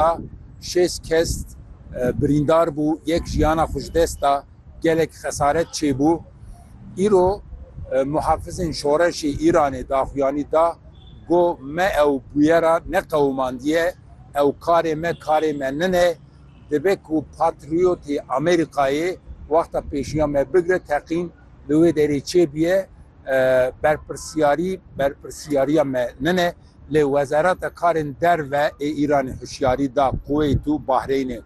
da şêst kes birîndar bû, yek jiyana xwe ji dest da, gelek xesaret çêbû. Îro muhafizên şoreşê Îranê daxuyanî da ku me ew bûyera neqewimandiye, ew karê me karê me nine, dibe ku patriyotê Amerîkayê wexta pêşiya me bigire teqîn, li wê derê çêbûye berpirsyarî berpirsyariya me nine. Lê Wezareta Karên Derve ê Îranê hişyarî da Kuweyt û Bahreynê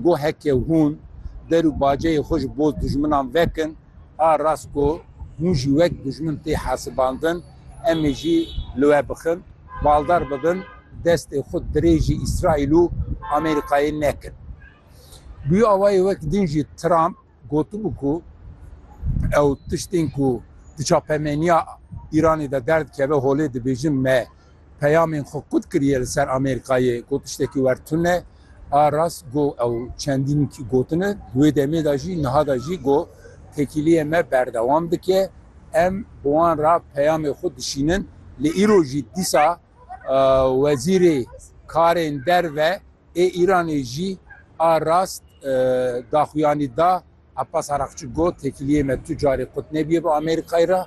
got heke hûn der û baceyê xwe ji bo dijminan vekin, a rast ku hûn jî wek dijmin tê hesibandin, em ê jî li we bixin, baldar bibin, destê xwe dirêjî Îsraîl û Amerîkayê nekin. Bi wê awayê wek din jî Trump Gotibû ku ew tiştên ku di çapemeniya Îranê de derdikeve holê dibêjin me peyamên xwe kut kiriye li ser Amêrikayê ku tiştekî wer tune a rast go ew çendîn gotine di wê demê de jî niha de jî go tekîliyê me berdewam dike em bi wan re peyamê xwe dişînin lê îro jî dîsa wezîrê karên derve Ê Îranê jî a rast daxuyanî da. Abbas Araqçi got, Têkiliyê me tu carê qut nebîye bi Amerîkayê re.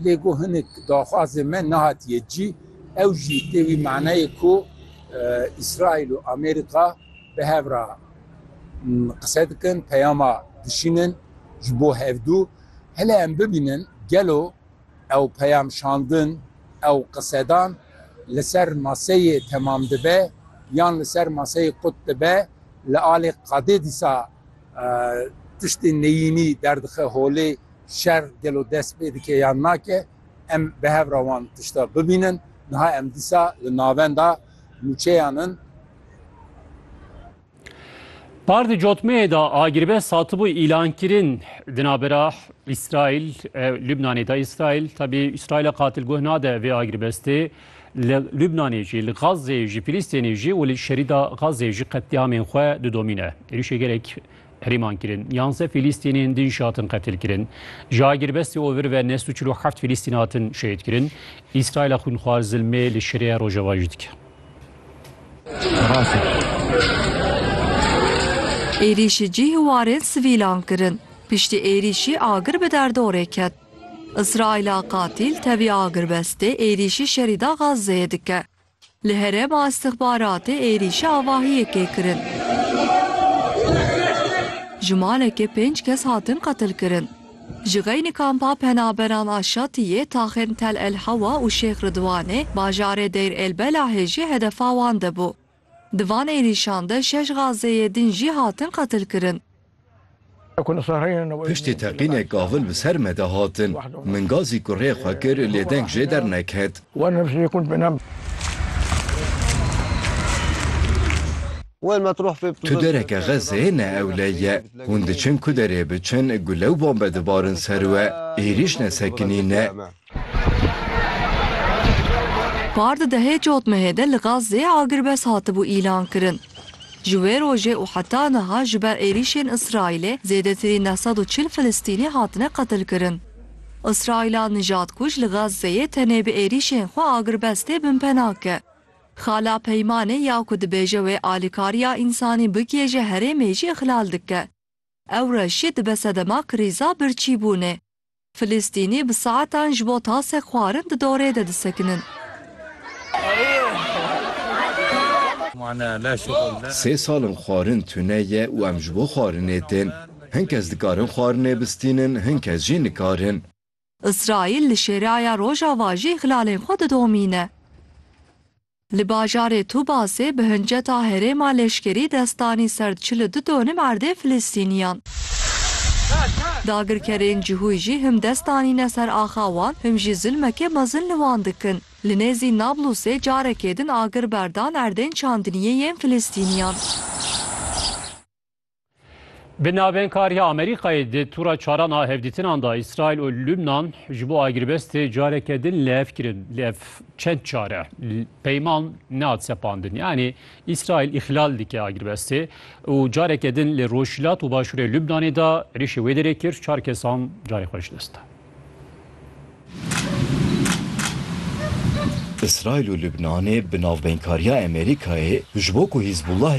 Lê got hinek daxwazên me nehatiye cî. Ew jî tê wî manayê ku Îsraîl û Amerîka bi hev re qise dikin, peyama dişînin ji bo hevdu. Hele em bibînin gelo Ew peyam şandin, ew qisedan li ser maseyê temam dibe yan li ser maseyê qut dibe, li alê qadê dîsa tiştê neyînî derdixe holê, şer gelo dest pê dike yan nake, em bi hev re wan tişta bibînin, niha em dîsa li navenda nûçeyan in. Par di cotmeyê de agirve satibû îlankirin di navbera Îsraîl Lubnanê de Îsraîl tebî Îsraîla qatil guh nade vê agirbestê li Lubnanê jî li Gazê jî Filîstênê jî û li şerîda Gazê jî qetlîamên xwe didomîne. Êrîşê gelek herêman kirin. Yanze Filîstînên din jî hatin qetil kirin. Ji agirbestê û vir ve nes û çil û heft Filîstîn hatin şehîd kirin. Îsraîla xwînxwar zilmê li şerê Rojava jî dike. Êrîşî cîh û warên sivîlan kirin. Piştî êrîşî agir bi derdorê ket. Îsraîla qatîl tevî agirbestê êrîşî şerî da Gazeyê dike. Li herêma îstixbaratê êrîşî avahiyekê kirin. Ji malekê pênc kes hatin qetilkirin. Ji xeynî kampa penaberan a Şatiyê, Taxên Tel El Hewa û Şêx Ridwanê, bajarê Deyr El Belahê jî hedefa wan de bû. Di van êrîşan de şeş Gazeyê din jî hatin qetilkirin. Piştî teqînek gavil bi ser me de hatin. Min gazî kurê xwe kir lê deng jê derneket. Tu dereke Xezê ne ewle ye. Hûn diçin ku derê biçin gule û bombe dibarin ser we. Êrîş ne sekinî ne. Par di dehê cotmehê de li Xezê agirbest hatibû îlankirin. Ji wê rojê û heta niha ji ber êrîşên Îsraîlê zêdetirî neh sed û çil Filistînî hatine qetilkirin. Îsraîla nijadkuj li Xezeyê tenê bi êrîşên xwe agirbestê binpena ke. Xala Peymanê ya ku dibêje wê alîkariya însanî bikê ji herêmê jî ixlal dike. Ewreş jî dibe sedema krîza birçîbûnê. Filistînî bi saetan ji bo tasek xwarin di dorê de disekinin. Sê sal in xwarin tune ye û em ji bo xwarinê tên. Hin kes dikarin xwarinê bistînin, hin kes jî nikarin. Îsraîl li Şêraya Rojava jî xilalên xwe didomîne. Li bajarê Tubasê bi hinceta herêma leşkerî dest danî ser çil û du donim erdê Filistîniyan. Dagirkerên cihûy jî him dest danîne ser axa wan him jî zilmekê mezin li wan dikin. Li nêzî Nablusê carekê din agir berdan erdên çandiniyê yên Filistîniyan. Bi navênkariya Amerîkayê di tûra çaran a hevdîtinan da Îsraîl û Lubnan ji bo agirîbestê careke din lev kirin. Lê ev çend car e? Peyman nehat sepandin. Yanî Îsraîl îxlal dike agirîbestê û careke din li Rojhilat û Başûrê Lubnanê da êrîşê wê derê kir, çar kesan carê xwe ji dest da. Îsraîl û Lubnanê bi navbeynkariya Amerîkayê ji bo ku Hîzbullah